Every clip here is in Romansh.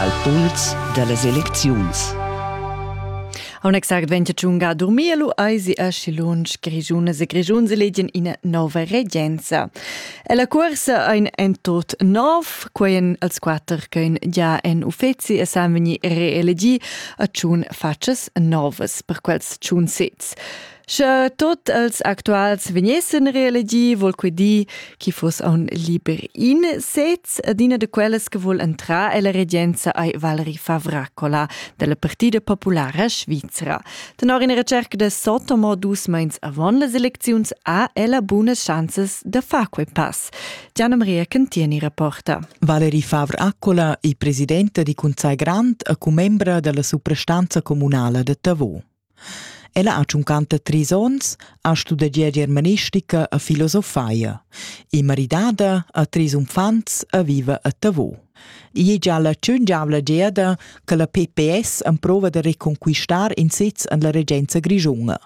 al puls da las elecziuns. Aun exact vente tschunga dormir lu eisi aschi lunsch Grigiunas e Grigiuns elegien ina nova regenza. Ella cuorsa ein en tot nov, queien als quatter ch'ein già en uffeci e san vegni reelegi a tschun fatschas novas per quels tschun sez. Sche tot els actuals vegnessen reelegi, vol quei dir, chi fuss aun liber in sez, ed ina de quellas che vol entrar ella regenza ei Valerie Favracola della Partida Populara Svizra. Tenor ina recerca de Sotomo dus meins avon las elecziuns ha ella bunas chanzes da far quei pass. Gianna Maria Cantieni rapporta. Valerie Favracola è presidenta di Conzai Grand e commembra della suprastanza comunala de Tavò. Ella ha tschuncanta trais onns, ha studegià germanistica e filosofia. È maridada, ha trais uffants e viva a Tavau. Igl è gia la tschungiavla giada che la PPS emprova da reconquistar in sez en la regenza grischuna.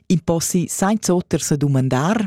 In possi senza oter sa dumandar?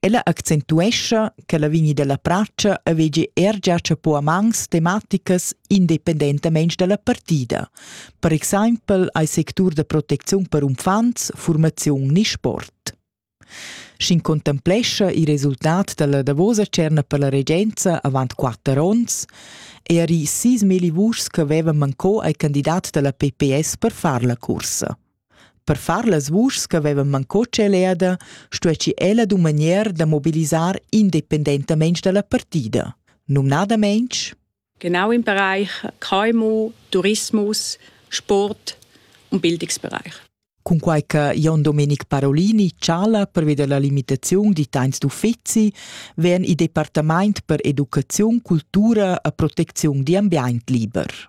Ella accentuescha che la vigni dalla pratscha avegi er gia chapo a mans tematicas independentamein dalla partida. Per exempel ei sectur da protecziun per uffants, formaziun ni sport. Sc'in contemplescha il resultat dalla davosa cerna per la regenza avant quatter onns, er i sis meli vuschs che avevan manco ai candidat dalla PPS per far la cursa. Per far las vuschs ch'havevan mancò tscheleda, stuessi ella dumagnar da mobilisar independentamain dalla partida, numnadamein Genau im Bereich KMU, Tourismus, Sport und Bildungsbereich. Cunquai che Jon Domenic Parolini chala pervi dalla limitaziun di temps d'uffizi, vegn il departament per educaziun, cultura e protecziun di ambient liber.